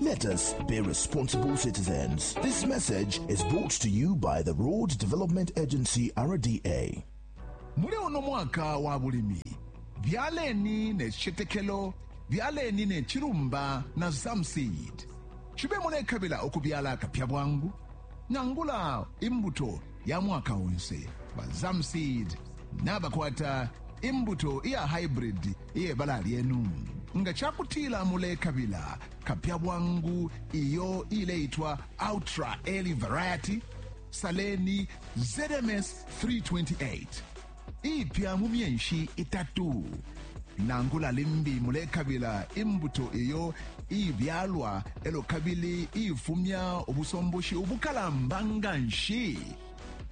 Let us be responsible citizens. This message is brought to you by the Road Development Agency, RDA. muli uno mwaka wa bulimi byaleni ne citetekelo byaleni ne cilumba na zamseed cibe mulekabila ukubyala akapya bwangu nangula imbuto ya mwaka onse ba zamseed nabakwata imbuto iya hybrid iye bala lyenu nga cakutila mulekabila kapya bwangu iyo ileitwa ultra early variety saleni zms 328 iipya mu myeshi itatu. Nangula limbi mulekabila imbuto iyo iibyalwa elo kabili iifumya ubusomboshi ubukalamba nga nshi,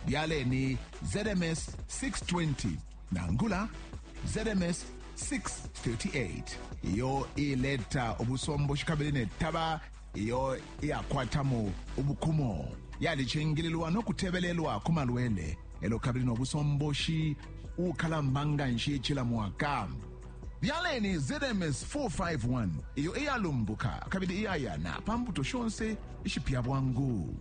byaleni ZMS 620 nangula ZMS 638 iyo iileta ubusomboshi kabili ne taba iyo iyakwatamo ubukumo yalicingililwa no kutebelelwa ku malwele elo kabili no busomboshi ukalamba nga nshi cila mwaka byaleni zms 451 iyo iyalumbuka kabili iyayana pa mbuto shonse ishipya bwangu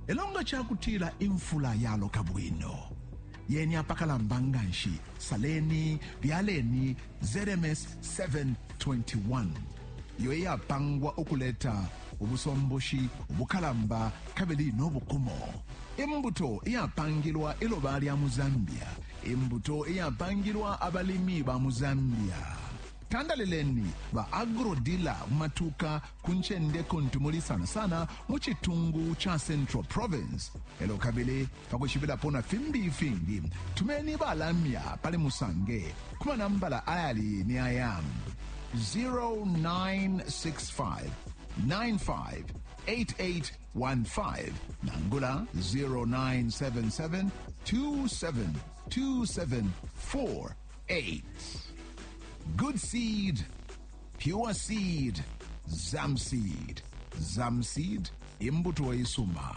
elo nga cakutila imfula yaloka bwino yeni apakalamba nga nshi saleni byaleni ZMS 721 iyo iyapangwa ukuleta ubusomboshi ubukalamba kabili no bukumo imbuto iyapangilwa iloba lya mu zambia imbuto iyapangilwa abalimi ba mu zambia tandalileni ba agrodila mu matuka ku ncende kuntu muli sana sana mu citungu ca central province elo kabili Pa kwishibilapo na fimbi ifingi, tumeni ba lamya pali Musange ku manambala ayali ni aya, 0965 958815 nangula 0977 2727488. Good seed, pure seed, Zamseed. Zamseed, imbuto isuma.